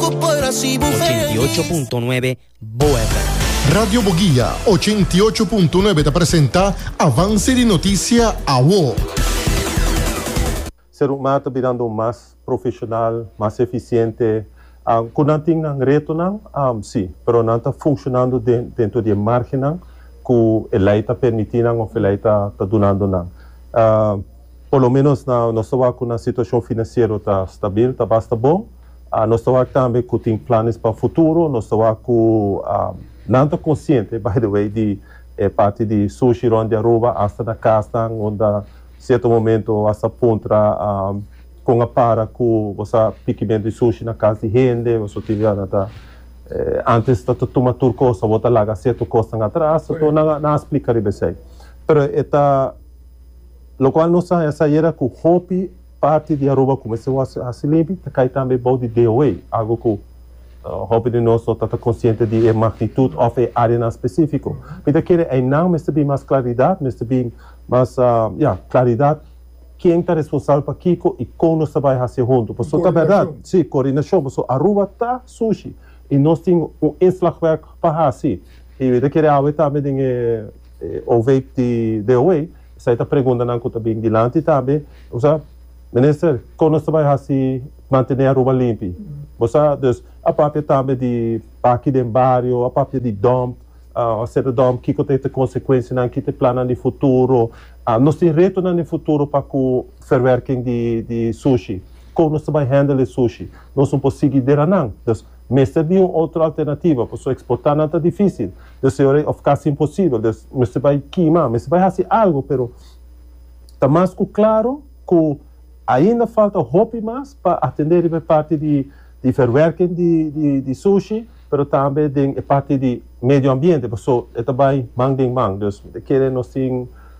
88.9 Bo FM. Radio Boguia, ochenta i ocho punto nuebe ta presenta Avance di Noticia, awo. Serukma ta bidando un mas profesional, mas eficiente. Cu nan tin nan retonan? Si, pero nan ta funccionando dentro di e margennan cu e ley ta permiti nan of e ley ta dunando nan. Por lo menos nos ta wak cu nan situacion financiero ta stabil, ta basta bon. Nos ta wak tambe ku tin planes pa futuro. Nos ta wak ku nan ta konsiente, by the way, di e parti di sushi rònt di Aruba asta na kasnan unda sierto momento bo a sa puntra kon a para ku bo sa pikimentu di sushi na kas di hende o suti. Nan ta antes ta ta tuma tur kos, awor ta laga sierto kosnan atras. So nan nan a splika riba esei. Pero e ta lokual nos a haña sa yera ku hopi. Parti di Aruba ku mester wòrdu hasi limpi ta kai tambe bou di DOE, algu ku hopi di nos no tata konsiente di e magnitut òf e áreanan spesífiko. Mi ta kere einan mester bin mas klaridat, mester bin mas, ya, klaridat ken ta responsabel pa kiko i kon nos ta bai hasi e huntu. Pasobra ta bèrdat, sí, koordinashon, pasobra Aruba ta sushi i nos tin un inslagwerk pa hasi. I mi ta kere awe tambe den e OVEIP di DOE. Esei ta preguntanan ku ta bin dilanti ta be, Bo sa, Minister, kon nos ta bai hasi mantené Aruba limpi? Bo sa, dus, a papia tambe di baki den bario, a papia di dòmp, a seta dòmp, kiko ta e ta konsekuensianan, ki ta e plannan di futuro? Nos tin retonan den futuro pa ku verwerking di sushi. Kon nos ta bai hendel e sushi? Nos no por sigui deranan. Dus. Mester bin un otro alternativa, pasobra exportanan ta dificil, deseore of casi imposibel, dus mester bay kima, mester bay haci algo, pero ta mas cu claro cu ainda falta hopi mas pa atende riba e parti di di verwerking di di di sushi, pero tambe den e parti di medio ambiente, pasobra e ta bay man den man, dus kere nos tin.